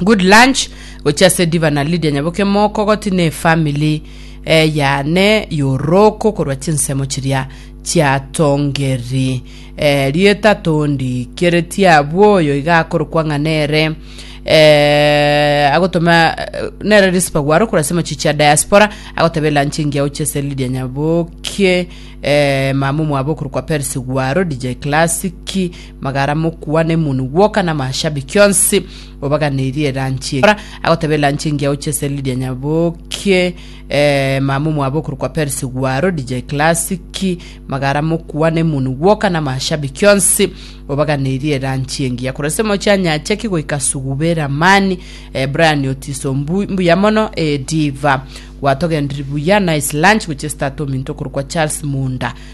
Good lunch gochia ase Diva na Lydia Nyaboke mokogoti ne family eh, yane yoroko korwa chinsemo chiria chiatongeri eh, rieta tondi kereti abwo oyo iga akorokwa ng'a nere eh, agotoma eh, nere Rispa gwaro korwa ase machichi ya diaspora agotebe lunch engiya gochia ase Lydia Nyaboke eh, mama omwabo okorokwa Percy gwaro DJ Classic Magara mokwane munu gwoka namashabiki onsi obaganirie eranchi eye. Kora agoteba eranchi engiya gochia ase Lydia Nyaboke, eh, mama omwabo okorokwa Percy Gwaro, DJ Classic, Magara mokwane munu gwoka namashabiki onsi obaganirie eranchi engiya. Korwa ase Mocha Nyacheki goika Sugube Ramani, eh, Brian Otiso mbu- mbuya mono, eh, Diva gwatogendiri buya, Nice Lunch gochia ase tata ominto okorokwa Charles Munda,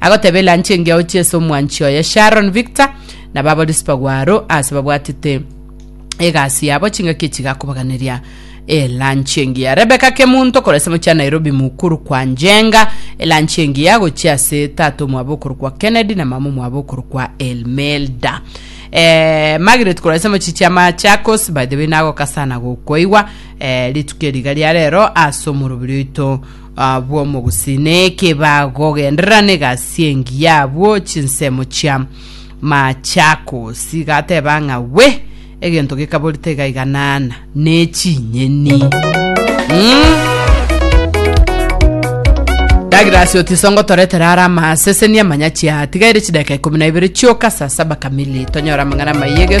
Agoteba elanchi engiya ochie ase omwanchi oye Sharon Victor na baborisi bagwo aro ase babwatete egasi yabo chingaki echi gakobaganeria elanchi engiya. Rebecca Kemunto korwa ase mochia Nairobi mukuru kwa Njenga elanchi engiya gochia ase tata omwabo okorokwa Kennedy na mama omwabo okorokwa Elmelda. Eh, Margaret korwa ase mochie chia Machakos by the way nagoka sana gokoigwa eh, rituko eriga ria rero ase omorobiri oito Abwo omogusii neeke bagogenderera negasi engiya abwo chinsemo chia Machakosi gateba ng'a we egento gekabori tegaiganana ne chinyeni. Mm. Douglas Otisongo toretera ara amaseseni amanyachi atigaire chidaka ikumi na ibere chioka saa saba kamili tonyora amang'ana maiyege